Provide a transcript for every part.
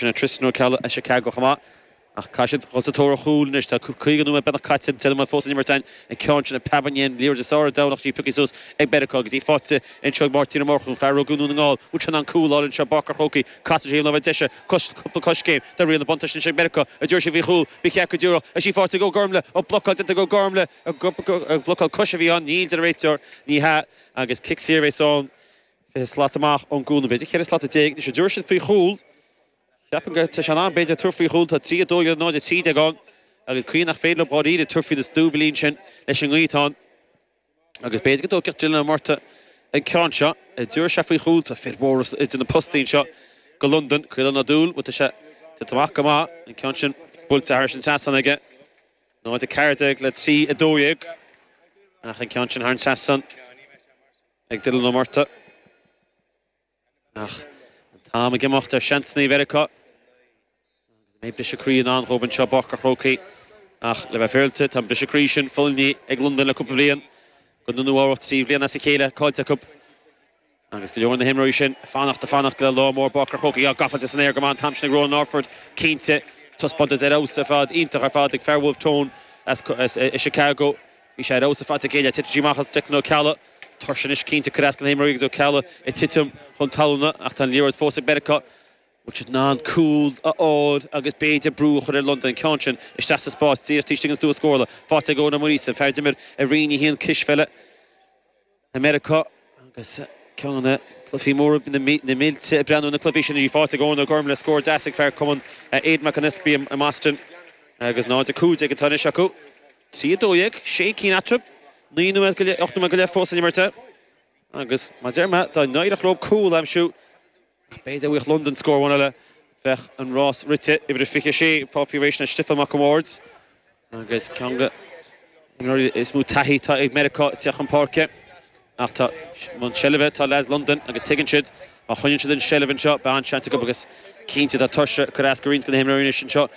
Sin é Tristan Ó Ceallaigh as Chicago chomh maith. Ach caithfidh siad dhul sa tóir ar chúl anois. Tá caoga nóiméad beagnach caite ag an deireadh fós ag imirt an ceann sin ag Pat Ba dhéin liathróid is airde Domhnach G pioctha suas ag Meiriceá agus í faighte anseo ag Máirtín Ó Murchú, fear a rugadh i nDún na nGall. Muid sin an cúl álainn anseo i bPáirc an Chrócaigh. Casann sé ar thaobh na láimhe deise cúpla coiscéim tá riail an bhuntáiste anois ag Meiriceá. An dtiúrfaidh sé faoi chúl? Ba cheart go dtiúrfadh. Tá sí faighte ag Ó Gormlaigh. An blocáil déanta ag Ó Gormlaigh. Blocáil cois a bhí ann. Níl, deir an réiteoir. Ní hea agus cic saor a bheas ann. fiche slat amach ón gcúl, b'fhéidir, ceithre slata déag, anois, an dtabharfaidh siad faoi chúl. Ceapaim go, tá sé in am, b'fhéidir, tabhairt faoi chúl, tá trí a dó dhéag, 0:13 ann, agus cuimhnigh nach féidir liom dháiríre tabhairt faoin is dúbailí ansin leis an ngaoth ann, agus b'fhéidir go dtóigfeadh Dylan Ó Murtagh an ceann seo, an dtabharfaidh sé faoi chúl, tá fir mhóra idir na postaí anseo ag Londain, Caolán Ó Dúill, bhuel, tá sé déanta amach go maith, an ceann sin buailte thairis an trasnán aige, 0:14 le trí a dó dhéag, ach an ceann sin thar an trasnán. Ag Dylan Ó Murtagh. Ach an t-am ag imeacht ar sheans Mheiriceá. Agus an mbeidh briseadh croí i ndán dhóibh anseo i bPáirc a' Chrócaigh. Ach le bheith féaráilte, tá an briseadh croí sin fulaingthe ag Londain le cúpla bliain. I gcoinne Nua Eabhrac trí bhliana as a chéile caillte acu. Agus go leor de na himreoirí sin ag fanacht, ag fanacht go le lá mór i bPáirc a' Chrócaigh. Á, gabháilte san aer go maith an t-am sin ag Ronan Orford, cinnte. Taispeántas ar fheabhas ar fad, iontach ar fad ag fear Wolfe Tones Chicago. Bhí sé ar fheabhas ar fad ag éileamh titim amach as Declan Ó Ceallaigh. Tuirse anois cinnte ag cur as go na himreoirí agus Ó Ceallaigh ag titim chun talúna ach tá an liathróid fós ag Meiriceá. An bhfuil siad in ann cúl a fháil agus b'fhéidir brú a chur ar Londain? An ceann sin isteach sa spás díreach taobh istigh den stua scórála, faighte ag Eoin Ó Muiríosa, fear a d'imir i Roinn 1 cispheile. i Meiriceá agus ceann de na cluichí móra na mílte ag breathnú ar na cluichí sin í faighte ag Eoin Ó Gormlaigh, scór deas ag fear Chumann Aodhán Mac an Easpaig i mBoston agus 0-15 atá anois acu. 3-12, sé cinn eatarthu, naoi nóiméad go leith, ocht nóiméad go leith fós le n-imirt agus mar a deir muid, dá n-éireodh leo cúl a aimsiú, B'fhéidir, dá bhfaigheadh Londain, scór amháin eile bheadh an rás rite, uimhir a 26, ag fáil faoi réir, sin é Stiofán Mac an Bhaird agus ceann de na himreoirí is mó taithí atá ag Meiriceá ag teacht chun páirce ach tá an seilbh ag leaids Londain agus tuigeann siad má choinníonn siad an seilbh anseo beidh an-seans acu agus cinnte tá tuirse ag cur as go roinnt de na himreoirí anois anseo.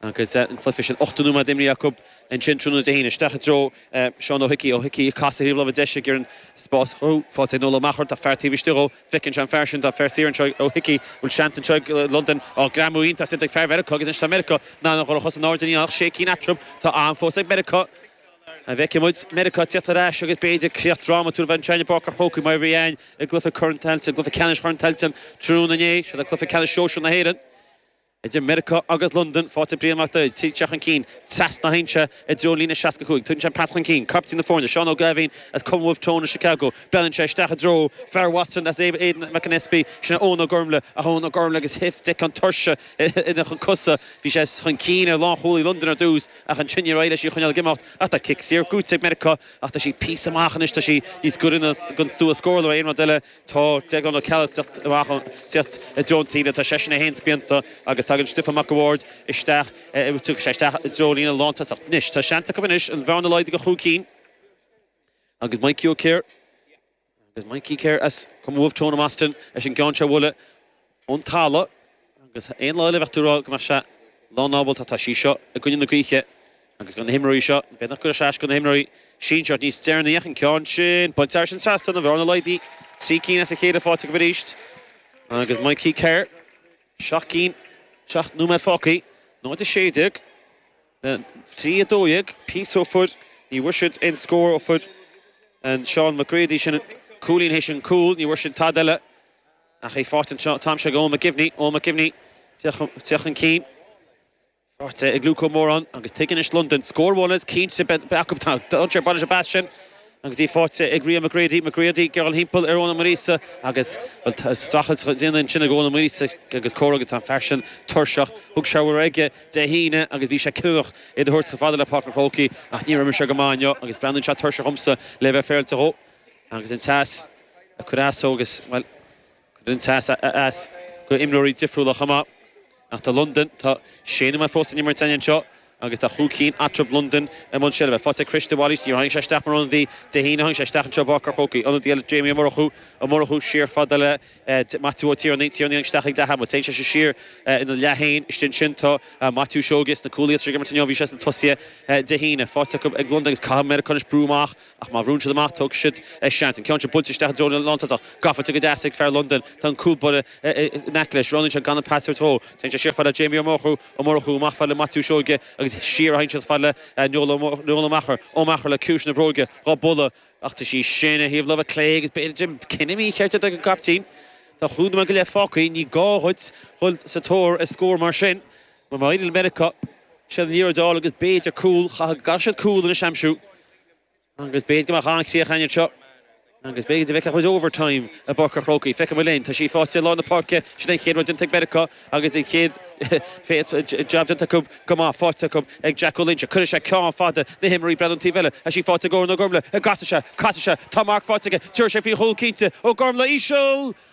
Agus an cluiche sin ochtó nóiméad imeartha acu, ansin tráthnóna Dé hAoine, isteach i dtreo Seán Ó hIcí. Ó hIcí ag casadh ar thaobh na láimhe deise, gearrann spás chucu. Faighte ag Noel Ó Meachair, tá fear taobh istigh dhó. Feiceann sé an fear sin, tá fear saor anseo ag Ó hIcí. Bhfuil seans anseo ag Londain? Á, greamú iontach déanta ag fear Mheiriceá, agus anois tá Meiriceá in ann a dhul ar chosa in airde, níl ann ach sé cinn eatarthu. Tá am fós ag Meiriceá. An bhfeicfidh muid Meiriceá ag teacht ar ais agus b'fhéidir críoch dhrámatúil a bheith anseo i bPáirc an Chrócaigh mar a bhí ann i gcluiche Corn Tailteann, cluiche ceannais Chorn Tailteann, tráthnóna inné? Seo é cluiche ceannais sóisir na hÉireann. Idir Meiriceá agus Londain, faighte ag Brian Mac Daid, ag teacht chun cinn, trasna ansin, i dtreo líne 65, Tugann sé an pas chun cinn, Caiptín na Foirne, Seán Ó Gábháin, As Cumann Wolfe Tone in Chicago, buaileann sé isteach i dtreo, fear Bhostúin, As Aidan McAnespie, Sin Eoin Ó Gormlaith, Ach Eoin Ó Gormlaith agus Hif Dic an Tuirse ina chuid cosa, Bhí sé chun cinn ar lánchúlaí Londain ar dtús, ach ansin níor éirigh leis í a choinneáil ag imeacht, ach tá cic saor buaite ag Meiriceá, ach tá sí píosa amach anois, tá sí níos gaire don stua scórála ná aon rud eile, Tá Deaglán Ó Ceallaigh amach ag tíocht i dtreo an taobhlíne, tá seisean é féin spíonta agus tagann Stiofán Mac a' Bhaird isteach, tiocfaidh sé isteach i dtreo líne na lántosach. Anois, tá seans acu anois an bhearna a laghdú go chúig cinn agus Maidhcí Ó Ciardha, agus Mikey Kerr as Cumann Wolfe Tone i mBoston leis an gceann seo a bhualadh. ón talamh, agus aon lá eile bheadh tú ag rá go mbeadh sé lánábalta. Tá sí seo i gcoinne na gaoithe agus i gcoinne na himreoirí seo. B'fhéidir nach gcuirfeadh sé as go na himreoirí sinsir níos deireanaí, ach an ceann sin, buailte aigesean trasna, an bhearna laghdaithe, trí cinn as a chéile faighte acu arís, agus Mikey Kerr, seacht gcinn, seacht nóiméad fágtha, 0-16 le 3-12, píosa ó fuair ní bhfuair siad aon scór ó fuair an Seán McGrady sin cúilín théis an chúil, ní bhfuair siad tada eile Ach í faighte anseo atá aimsithe ag Eoin McGivney. Eoin McGivney ag teacht chun cinn. Faighte ag Luke Moran agus tuigeann anois Londain. Scór amháin is cinnte beidh acu. Tá dánacht ag baint leis an bpas sin agus í faighte ag Ria McGrady. McGrady ag gearradh thimpeall ar Eoin Ó Muiríosa agus, bhuel, tá streachailt á dhéanamh ansin ag Eoin Ó Muiríosa agus cóir agus tá an fear sin tuirseach. Thug sé a raibh aige Dé hAoine agus bhí sé cinniúnach iad a thabhairt chomh fada le Páirc an Chrócaigh ach níor imir sé go maith inniu agus breathnaíonn sé tuirseach dhomsa le bheith féaráilte dhó. Agus an teas ag cur as dó agus, bhuel, cuireann an teas as go imreoirí difriúla chomh maith. Ach tá Londain, tá sé nóiméad eile fós le himirt anseo agus tá chúig cinn eatarthu, Londain i mbun seilbhe. Faighte ag Chris de Bhailís, níor tháinig sé isteach mar ionadaí Dé hAoine, tháinig sé isteach anseo i bPáirc an Chrócaigh. Ionadaí eile Jamie Ó Murchú, Ó Murchú siar fad le Maitiú Ó Tiarnaigh, Tiarnaigh tháinig isteach ag leath ama, téann seisean siar ina leath féin, istigh ansin tá Maitiú Seoige, sna cúlaí atá ag imirt inniu, bhí sé sna tosaithe Dé hAoine. Faighte ag Londain agus caithfidh Meiriceá anois brú amach. Ach má bhrúnn siad amach, tógfaidh siad a seans. An ceann sin buailte isteach i dtreo an lántosach. Gafa go deas ag fear Londain. Tá an cúl báire in aice leis. Roghnaíonn sé gan an pas a thabhairt dhó. Téann sé siar fad le Jamie Ó Murchú. Ó Murchú amach fad le Maitiú Seoige agus siar a théann siad fad le Noel Ó Meachair. Ó Meachair le ciumhais na bróige dhá bualadh. Ach tá sí sin ar thaobh láimhe clé agus b'fhéidir cinneadh mícheart ag an gcaiptín. Tá chúig nóiméad go leith fágtha. Ní gá dhuit dhul sa tóir ar scór mar sin. Má éiríonn le Meiriceá, siad an liathróid a fháil agus b'fhéidir cúl. Caithfidh siad cúl anois a aimsiú. Agus b'fhéidir go mbeadh an-chríoch ainn anseo. Agus b'fhéidir go bhfeicfeadh muid 'Overtime' i bPáirc a' Chrócaigh. Feicfidh muid linn. Tá sí faighte i lár na páirce. Sin é an chéad rud déanta ag Meiriceá agus an chéad jab déanta acu go maith, faighte acu ag Jacko Lynch. Cuirfidh sé ceann fada na himreoirí ag bailiú ar an taobh eile. Tá sí faighte ag Eoin Ó Gormlaigh. Casfaidh sé. Casfaidh sé. Tá Marc faighte aige. Tiúrfaidh sé faoi chúl cinnte. Ó Gormlaigh, íseal!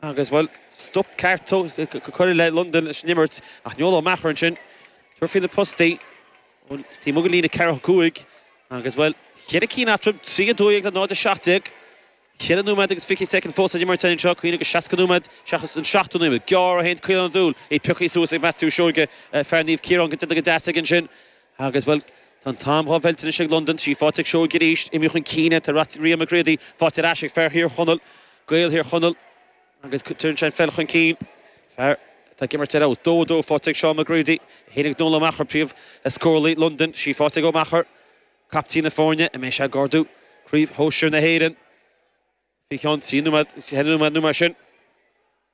Agus, bhuel, stop ceart curtha le Londain leis an imirt, ach Noel Ó Meachair ansin. ag tabhairt faoi na postaí ón taobh amuigh den líne ceathracha a cúig agus, bhuel, cheithre cinn eatarthu, 3 12 le 0 17. Ceithre nóiméad agus fiche soicind fós le himirt anseo, cuimhnigh gur seasca nóiméad seachas an seachtó nóiméad. Gearr a haon do Caolán Ó Dúill, é pioctha suas ag Maitiú Seoige, fear Naomh Ciarán. Go dtite go deas aige ansin. Agus, bhuel, tá an t-am dhá mheilt anois ag Londain, sí faighte ag Seoige arís, imithe chun cinn é, tá rath Ríogh McCready faighte ar ais ag fear Thír Chonaill, Gaeil Thír Chonaill, agus cuireann sé an pheil chun cinn, fear atá ag imirt ar fheabhas. Dó a dó faighte ag Shaun McCready, a tháinig ag Noel Ó Meachair, príomh-scóralaí Londain, sí faighte ag Ó Meachair, caiptín na foirne, an mbeidh sé ag ardú craobh shóisir na hÉireann. Bhí ceann trí nó ceithre nó mar sin.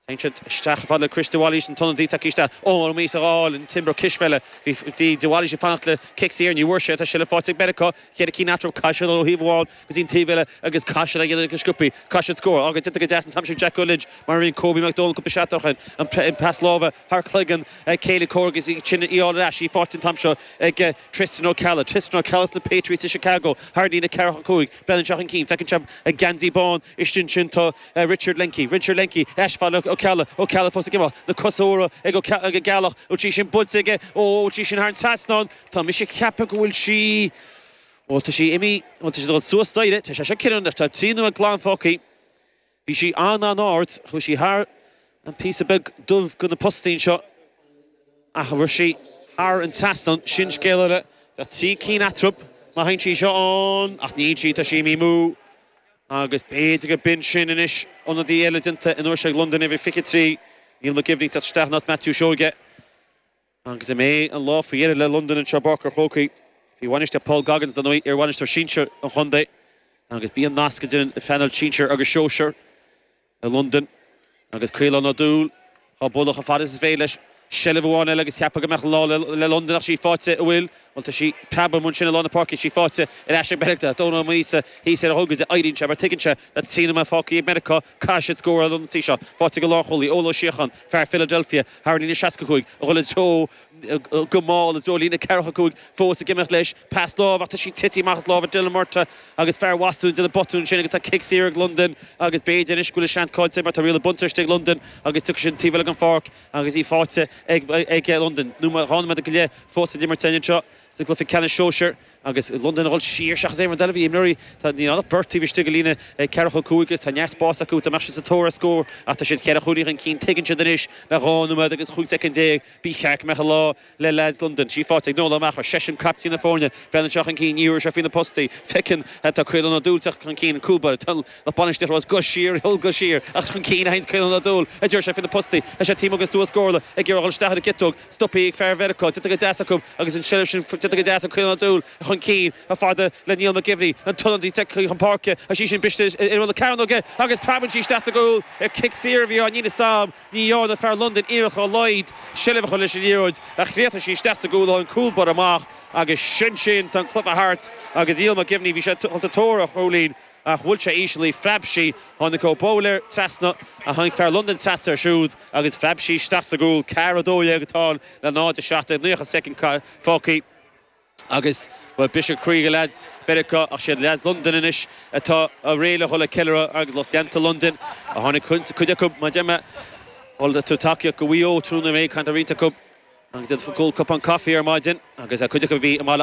Insint isteach ar fad le Chris De Bhailís, an t-ionadaí tagtha isteach Ómar Ó Maois a dh'fháil an t-imreoir cispheile. Bhí De Bhailís ag fanacht le cic saor, ní bhfuair sé é, tá sí faighte ag Meiriceá, cheithre cinn eatarthu Caiside ó thaobh amháin go dtí an taobh eile agus Caiside ag an uile an sciobfaidh Caiside scór. Ágh, ag titim go deas an t-am sin Jack O'Lynch mar a rinne Kobe McDonald cúpla seachtain ó shin, an pas láimhe thar chloigeann céile comhraic agus í ansin a fháil ar ais, í faighte an t-am seo ag Tristan Ó Ceallaigh, Tristan Ó Ceallaigh as na Patriots i Chicago, thar líne, ceathracha a cúig, beireann sé chun cinn, feiceann sé an geansaí bán istigh ansin, tá Richard Lenky, Richard Lenky, ar ais gafa ag Ó Ceallaigh, Ó Ceallaigh fós ag imeacht, na cosa úra ag Ó Ceallaigh, ag an gCeallach, tá sí sin buailte aige, óóó, an bhfuil sí sin thar an trasnán, tá mise ag ceapadh go bhfuil sí, ó tá sí imithe, ó tá sí ag dul suas an staighre, tá sé seo, Kieran, tá trí nóiméad go leith fágtha. Bhí sí an-an-ard, chuaigh sí thar an píosa beag dubh de na postaín seo, ach an raibh sí thar an trasnán, sin scéal eile. Bheadh trí cinn eatrab má théann sí seo ann, ach níl sí, tá sí imithe amú, agus b'fhéidir gur b'in sin anois ionadaí eile déanta an uair seo ag Londain uimhir a 23, Niall McGivney tagtha isteach in áit Maitiú Seoige. Agus an mbeidh an lá faoi dheireadh le Londain anseo i bPáirc an Chrócaigh faoi bhainistíocht Paul Coggins, dar ndóigh, iar-bhainisteoir sinsir an chontae agus bhí an nasc idir an phainéal sinsir agus sóisear i Londain. Agus Caolán Ó Dúill dhá bualadh chomh fada is is féidir leis seilbh amháin eile agus cheapfá go mbeadh an lá le Londain ach sí faighte, an bhfuil, bhuel tá sí ag preabadh amuigh ansin i lár na páirce, sí faighte ar ais ag Meiriceá. Dónal Ó Maoilíosa thíos ar a thóin ach éiríonn sé mar tuigeann sé na trí nóiméad fágtha ag Meiriceá. Caithfidh siad scóráil an ionsaí seo faighte ag an lánchúlaí, Eoin Ó Síocháin, fear Philadelphia, thar an líne, 65, a dhul i dtreo, go mall, i dtreo líne ceathracha a cúig, fós ag imeacht leis, pas láimhe ach tá sí tite amach as lámha Dylan Murtagh agus fear Bhostúin ag déanamh botún ansin agus tá cic saor ag Londain agus b'fhéidir anois go bhfuil an seans caillte aige mar tá Riail Buntaiste ag Londain agus tiocfaidh siad an taobh eile den pháirc agus í faighte ag Londain dhá nóiméad go leith fós le himirt anois anseo sa gcluiche ceannais sóisir agus i Londain a dhul siar seachas aon rud eile. Bhí imreoirí Tá níl ann ach beirt taobh istigh i líne ceathracha cúig agus tá neart spáis acu dá mbeadh siad sa tóir ar scór ach tá siad ceithre chúilín chun cinn Tuigeann siad anois le dhá nóiméad agus 15 soicind Ba cheart go mbeadh an lá le leaids Londain. Trí phointe ag Noel Maher. Is eisean captaen na foirne, Brennan seo chun cinn, ní bhfuair sé faoi na postaí. Feiceann Tá Caolan Ó Dúill tugtha chun cinn, cúl báire toiliúil nach bainisteoir thomhas guth siar, thiol guth siar, ach chun cinn a théanns Caolan Ó Dúill a deir sé faoi na postaí. Tá sé taobh amuigh agus dúil scór le ag iarraidh a dhul isteach ar an gciotóg. Stopthaí ag fear Mheiriceá, déanta go deas acu, agus an tseilbh sin, déanta go deas ag Caolán Ó Dúill, chun cinn chomh fada le Niall Mac Gibhní, an t-ionadaí tagtha chun páirce, agus í sin briste ar imeall na cearnóige agus preabann sí isteach sa gcúl ar chic saor a bhí ann níl a fhios agam. Ní dhearna fear Londain iarracht dá laghad seilbh a chur leis an liathróid ach chríochnaigh sí isteach sa gcúl ón gcúl báire amach agus sin sin tá an cluiche thart agus Niall Mac Gibhní, bhí sé ag dul sa tóir ar chúilín. Ach bhuail sé íseal í phreab sí, tháinig Ó Boghlaeir trasna, ach tháinig fear Londain trasna air siúd, agus phreab sí isteach sa gcúl, Car 12, a táil le 0, 7, 90 soicind fágthaí, agus bhuel, briseadh croí ag leaids Mheiriceá, ach is iad leaids Londain anois atá réidh le dhul ag ceiliúradh, agus lucht leanta Londain a tháinig, cuid acu, mar a deir mé, ag dul ag tabhairt tacaíocht do Mhaigh Eo tráthnóna, mé ag caint le roinnt acu, agus iad ag ól cupán caife ar maidin, agus cuid acu a bhí i mBaile